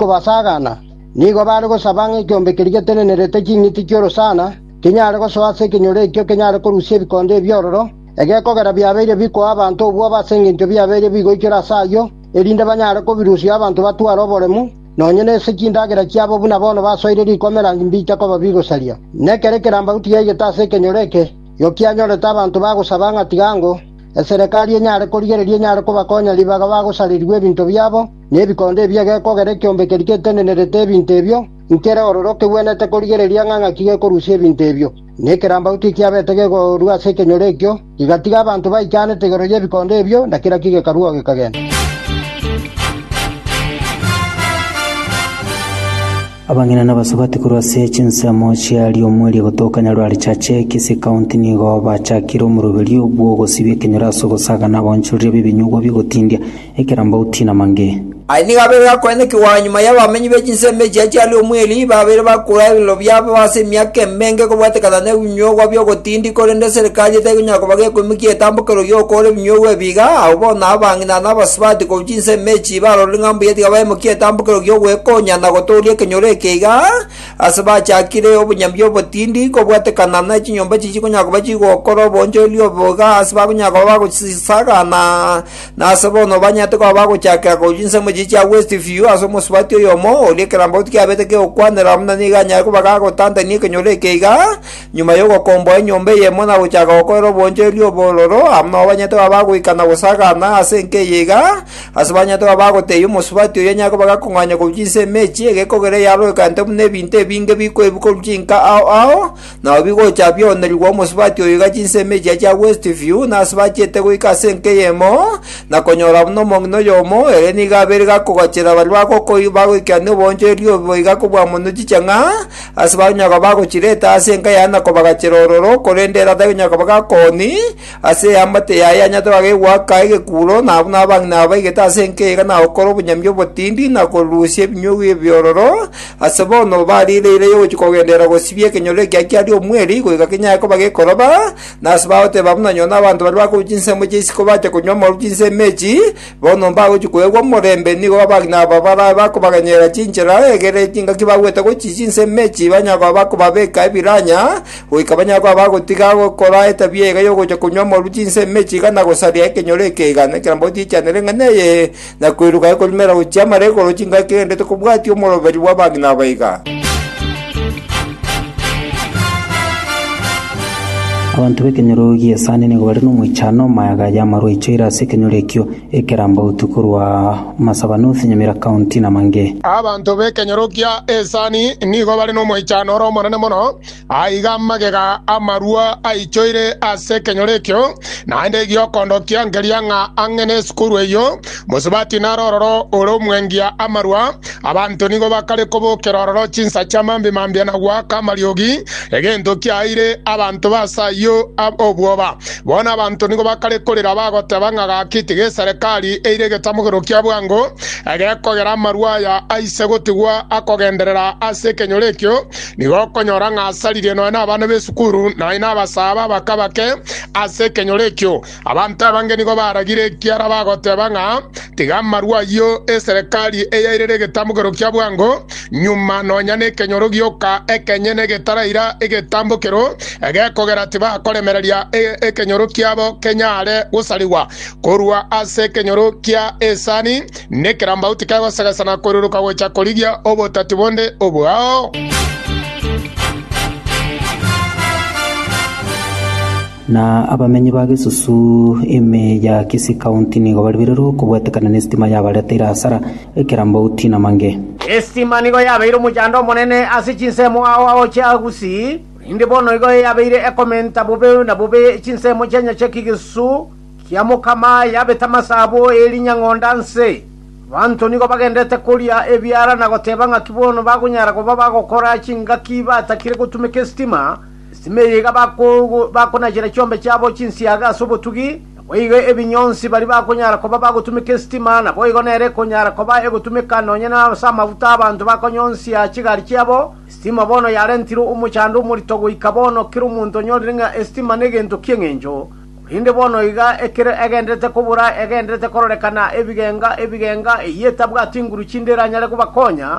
kobasagana, nigo bare gosaba ng'a ekeombe keria getenenerete ching'iti chi'orosana kinyare gosoa ase ekenyoro ekio kenyare korusia ebikondo ebiororo, egekogera biabeire bikoa abanto obwoba ase engencho biabeire bigoichore ase ayio, erinde banyare kobirusia abanto batware oboremu, nonya nese chindagera chiabo buna bono basoire rikomera mbicha koba bigosaria. Nekero ekerambauti yaigete ase ekenyoro eke, yokianyorete abanto bagosaba ng'a tiga ango, eserekari enyare korigereria enyare kobakonya ribaga bagosarerigwa ebinto biabo, Nebikondo ebi egekogera ekiombe keria getenenerete ebinto ebio, nkere ororo kegwenerete korigereria ng'a ng'aki gekorusia ebinto ebio. Na ekerambagu tikiabete gegorua ase ekenyoro ekio, gigatiga abanto baichanete igoro y'ebikondo ebio, na kera ki gekarua oo gekagenda. Abang'ina nabasubati korwa ase chinsemo chia Riomweri egotoka Nyarwarichache, Kisii County nigo bachakire omoroberio bw'ogosibia ekenyoro ase ogosaga na ogoonchoreria b'ebinyugwa bi'ogotindia ekerambauti namange. Aya nigo abeire akoenekigwa nyuma y'abamenyi be chinsemo echia chiaria omweli, babeire bakura ebirero biabo ase emiaka emenge kobwatekana nebinyuogwa bi'ogotindi, korende eserekari eteikonyara koba gekoimokia etambokero y'okoora ebinyuogwa ebi iga, abwo bono abang'ina na abasubati korwa chinsemo echi barorire ng'a mbuya tiga baimokie etambokero gi'ogwekonya na gotooria ekenyoro eke iga, ase bachakire obonyambi obotindi, kobwatekana nechinyomba chichikonyara koba chigokora obonchoreria obo iga ase bakonyara koba bagochisagana. Nase bono banyarete koba bagochakera korusia ensemo echiria chia West View ase omosubati oyomo, oria ekerambauti kiabete kegokwanera buna nigo anyare koba gagotantania ekenyoro eke iga, nyuma y'ogokomboa enyomba eyemo na gochaka gokorera obonchoreria obororo, amo nabo banyarete koba bagoika na gosagaana ase enka eye iga, ase banyarete koba bagotebia omosubati oria anyare koba gakong'anyia korusia ensemo echi, egekogera eyaroekanete buna ebinto ebinge bikoebu korusia inka ao ao, Nao bigocha bionerigwa omosubati oyo iga chinsemo echia chia West View nasubachete goika ase enka eyemo, na konyora buna omong'ina oyomo, ere nigo abeire gakogachera baria bagokoi bagoikerania oboonchoreria obo boiga kobua monwe chichang'a, ase bakonyaga koba bagochireta ase enka yaye na kobagachera ororo, korende ere atari konyara koba gakooni, Ase eamate yaye anyatora gegoaka egekuro, na buna abang'ina abaigete ase enkeiga nagokora obonyambi obotindi, na korusia ebinyugwa ebiororo, ase bono bariire eira y'ogochia kogenderera gosibia ekenyoro ekia kiaria omweri, goika kenyare koba gekoroba, na ase bagoteba buna nyoo n'abanto baria bakorwa chinsemo chia isiko bacha konywa amaru chinse emechi, bono mbagochia koegwa omorembe, nigo abang'ina aba barabe bakobaganyereria chinchera, egere chingaki bagwete gochia chinse emechi banyare koba bakobabeka ebiranya, goika banyagwe abagotiga gokora etabia eye y'ogocha konywa amoru chinsa emechie igana na gosaria ekenyoro eke igana ekerambe gotiechanera eng'ana eye, na koiruka ekorumera gochia amara igoro chingaki kegende tokobwati omoroberi bw'abang'ina aba iga. Abanto b'ekenyoro gi'esani nigo bare nomoichano omayaga y'amaru aichoire ase ekenyoro ekio, ekerambe gotwa korwa Masaba North, Nyamira County, na Mange. Abanto b'ekenyoro gia esani nigo bare nomoichano ore omonene mono. Aiga amagega amarua aichoire ase ekenyoro ekio, naende egiokondo kia nkeria ng'a ang'e nesukuru eyio, mosubati naro ororo ore omwengia amarua. Abanto nigo bakare kobokera ororo chinsacha mambi mambia na goaka amariogi, egento kiaeire abanto b'aase ayio obwoba. Bono abanto nigo bakare korera bagoteba ng'a gaki tiga eserekari eire egetamogero kia bwango egekogera amarua aya aise gotigwa akogenderera ase ekenyoro ekio, Nigo okonyora ng'a asaririe nonya nabana b'esukuru nonya nabasaaba abake bake ase ekenyoro ekio. Abanto abange nigo baragire ekiara bagoteba ng'a tiga amarwa ayio eserekari eyairere egetamokero kia bwango, nyuma nonya nekenyoro gioka ekenyene getaraira egetambokero egekogera tibakoremereria e- ekenyoro kiabo kenyare gosarigwa korwa ase ekenyoro kia esani Nekerambau tikegosegesa na koiruruka gocha korigia obotati bonde obwao. Na abamenyi ba Gesusu ime ya Kisii County nigo baribererwe okobwetekana nesitima yabareteire hasara, ekerambau tinamange. Esitima nigo yabeire omochando omonene ase chinsemo ao agochia Gusii, korende bono igo eyabeire ekomenta bobe na bobe chinsemo chi'enyache ki Gesusu. Kiamokama yabete amasaabo e rinyang'onda nse, abanto nigo bagendete koria ebiara na goteba ng'aki bono bakonyara koba bagokora chingaki batakire gotumeka esitima, esitima eye iga bakonachera chiombe chiabo chinsiaga ase obotugi, naboigo ebinyonsi baria bakonyara koba bagotumeka esitima naboigo nere ekonyara koba egotumeka nonya ase amafuta abanto bakonyonsia chigari chiabo, esitima bono yarentirwe omochando omorito goika bono kera omonto onyorire ng'a esitima negento ki'eng'encho. Korende bono iga ekero egenderete kobora egenderete kororekana ebigenga ebigenga, eyio etabwati inguru chinde eranyare kobakonya,